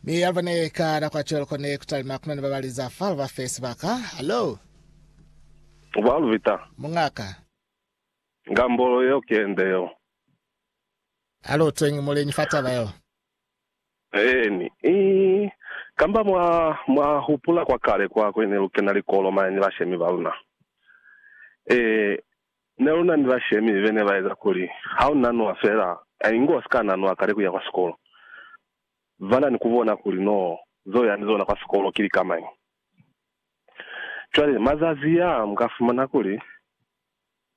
Mi yalaba ne ka da kwa cwelo kone kutalima kunani ba bali za falo ba fe sibaka. Hello, Ba Luvita, mungaka. nga mbolo yeo ki yende yeo. A lu utweñi muleñi fa taba yeo? Eeni. I, kamba mwa, mwa hupula kwa kale kwa kuli ne lu kena likolo mane ni bashemi ba luna? E, Ne lu na ni bashemi be ne ba eza kuli ha u nanwa fela, inge wa si ka nanwa kale ku ya kwa sikolo. Ba na ni ku bona kuli n'o zo ya ni zona kwa sikolo ki likamañi. Cwale mazazi a, mu ka fumana kuli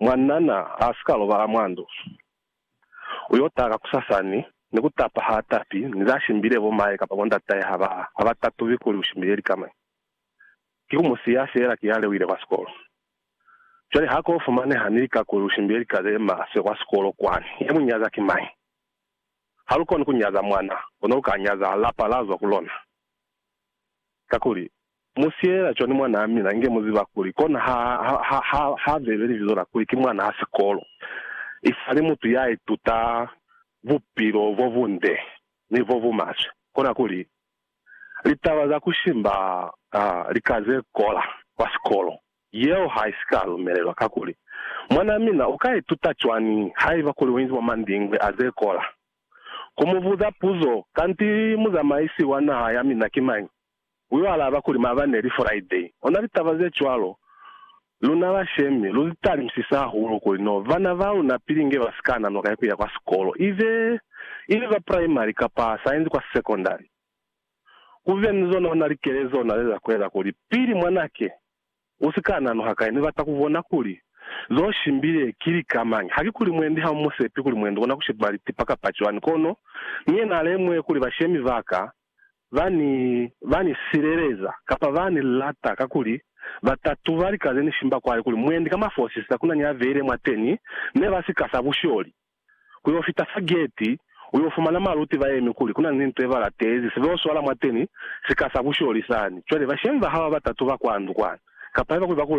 mwanana a si ka lobala mwa ndu. U y'o taha kakusasani ni ku tapa ha tapi, ni za shimbile bo mahe kapa bo ndatahe ha ba, ha ba tatubi kuli u shimbile likamañi. Ki ku mu siya fela ki ha lewile kwa sikolo. Cwale ha ko fumaneha ni lika kuli lu shimbile lika ze maswe kwa sikolo kwani, ya mu nyaza ki mañi? Ha lu koni ku nyaza mwana, kono lu ka nyaza lapa la zwa ku lona. Kakuli, mu siyelela cwani mwanaa mina inge mu ziba kuli kona ha, ha, ha, ha bebe libizo la kuli ki mwanaa sikolo, isali mutu ya ituta bupilo bo bunde ni bo bu maswe? Kona kuli, Litaba za ku simba lika ze kola kwa sikolo yeo ha i si ka lumelelwa. Kakuli, mwanaa mina u ka ituta cwañi haiba kuli u inzi mwa mandingwe a ze kola? Ku mu buza puzo, Kanti muzamaisi wa naha ya mina ki mañi? u yo alaba kuli, Maabane li Friday. Ona litaba ze cwalo Luna bashemi, lu italimsise hahulu kuli no bana ba luna pili nge ba si ka nanwa kai ku ya kwa sikolo, ibe i li ba praimari kapa sainzi kwa sekondari. Ku be ni zona ona likele z'o na li za ku eza kuli pili mwan'a ke u si ka nanwa hakai, ni bata ku bona kuli z'o shimbile ki lika mañi. Ha ki kuli mwendi ha mu mu sepi kuli mwendi kona ku sheba litipa kapa cwani, kono ni yena a lemuhe kuli bashemi ba ka ba ni, ba ni sileleza, kapa ba ni lata, kakuli ba ta tuba lika ze ni shimba kwale kuli mwendi ka mafosisa kuna ni a beile mwateni, ne ba sika sa busholi, ku yo fita fa geti, u yo fumana maluti ba yemi kuli kuna ni nto ye ba latezi, se bo swala mwateni, sika sa busholi sani. Cwale, bashemi ba haba ba ta tuba kwa ndu kwani, kapa haiba kuli ba ku,